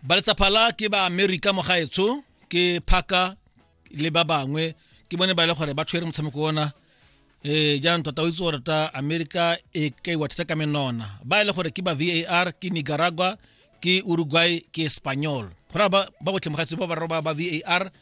ba letsapha la ke ba amerika mogaetsho ke phaka le ba bangwe ke bone ba e le gore ba tshwere motshameko ona eh jaanong tota o itse gore ta america e ka iwa thata ka menona ba e le gore ke ba var ke nicaragua ke uruguay ke espanyol go raya ba botlhe mogatsi ba ba roba ba var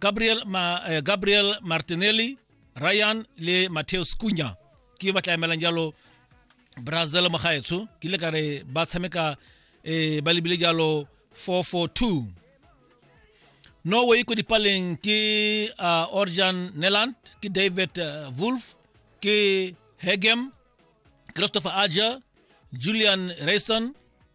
gabriel, ma, eh, gabriel martinelli ryan le mateus kunya ke ba tla emelang jalo brazil mo gaetsho ke ile ka re ba tshameka eh, ba lebile jalo 442 norway ko dipaleng ke uh, orjan neland ke david uh, wolf ke hegem christopher ager julian rayson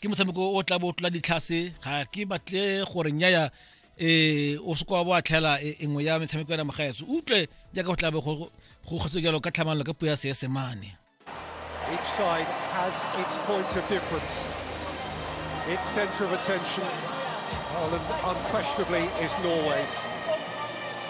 ke motshameko o tla bo tlola ditlhase ga ke batle gore nyaya um o seko wa bo a tlhela e, e nngwe ya metshameko ya namagaetso utlwe jaaka go tla bo go kgotse jalo ka tlhamanelo ka puo ya seesemane Each side has its point of difference. Its centre of attention, Ireland unquestionably is Norway's.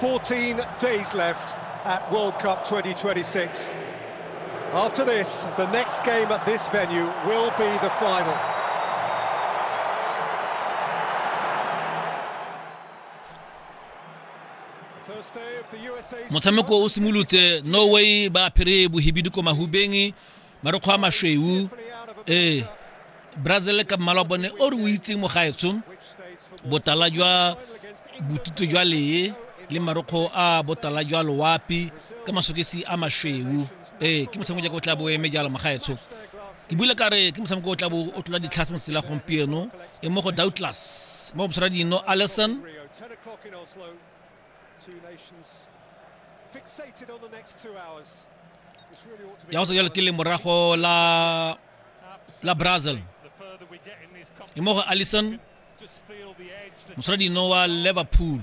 14 days left at World Cup 2026. After this, the next game at this venue will be the final. motshameko o simolotse norway ba apere bohibidu ko mahubeng marokgo a masweu ee brazil ka mmala wa bone o re o itseng mo gaetsho botala jwa botutu jwa lee le marokgo a botala jwa loapi ka masokesi a masweu ee ke motshameko jaaka o tla bo eme jalo magaetsho ke bule ka re ke motshameko o tla bo o tlola ditlhase mo tsela gompieno e mo go doubtless mo go bosara dino allison fixated on the next two hours. ya go tswela tile morago la la brazil e mo go allison mosala dino wa liverpool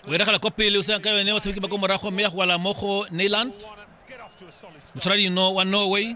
o eregela kwa pele o sena ka yone batshameki ba ko morago mme ya go wala mo go neyland mosala dino wa norway